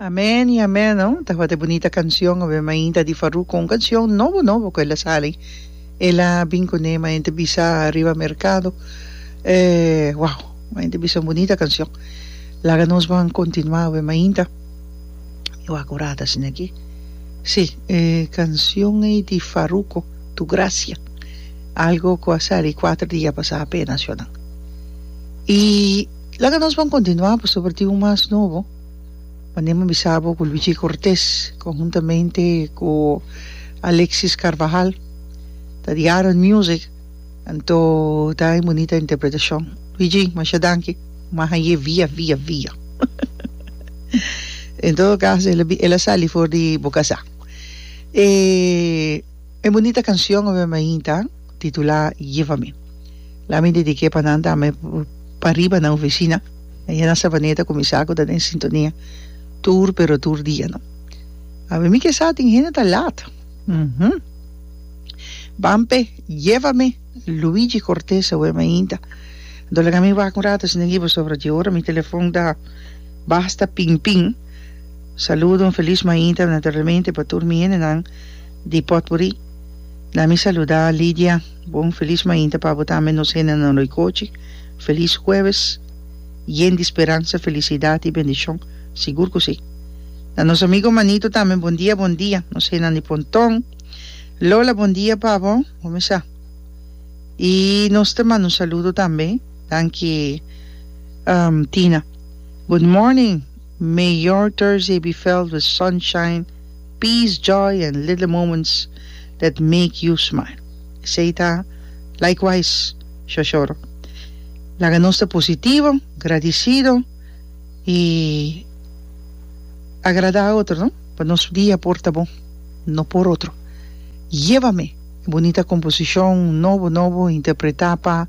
Amen y amen no tabata e bunita cancion awe mainta di Farouk con un cancion nobo nobo cu el a sali ela bin cu ne mainta bisa riba mercado e wow mainta bisa un bunita cancion laga nos ban continua awe mainta y wak ora ta asina aki si e cancion ey di Farouco tu gracia algo cu a sali cuatro dia pasa apenas yo nan y Laga nos bon kontinuá pasobra tin un mas nobo. Manera mi bisa bo ku Luigi Cortés konhuntamente ku Alexis Carvajal ta di Aran Music anto ta e bunita interpretashon. Luigi masha danki mas a ye via via via en todo kaso el a bi el a sali for di boka sa e bunita kanshon awe mainta. titulá Give a Me. La mi dediké pa nan tambe pariba nan ofisina. Ayer na Sabaneta kuminsá ku ta den sintonia tur pero tur dia no. Awe mi ke sa tin hende ta lat. Uhumm. Ban p'e Give a Me, Luigi Cortez awe mainta. Anto laga mi wak un rato asina aki pasobra dje ora mi telefòn ta basta ping ping. Saludo, un felis mainta naturalmente pa tur mi hendenan. Di potpuri la mi saluda Lidia bon felis mainta pa bo tambe nos hende nan roikochi felis hueves yen di speransa felicidad y bendicion sigur cu si na nos amigo manito tambe bon dia bon dia nos hendenan di ponton Lola bon dia pa bo bo mi sa y nos ta manda un saludo tambe danki Tina good morning. Mayor Thursday B. Veld with sunshine, peace, joy and little moments that make you smile. Esey ta likewise Shoshoro. Laga nos ta positivo, gradicido y agrada otro no pa nos dia por ta bon, no por otro. Llevame, e bonita composicion nobo nobo interpreta pa.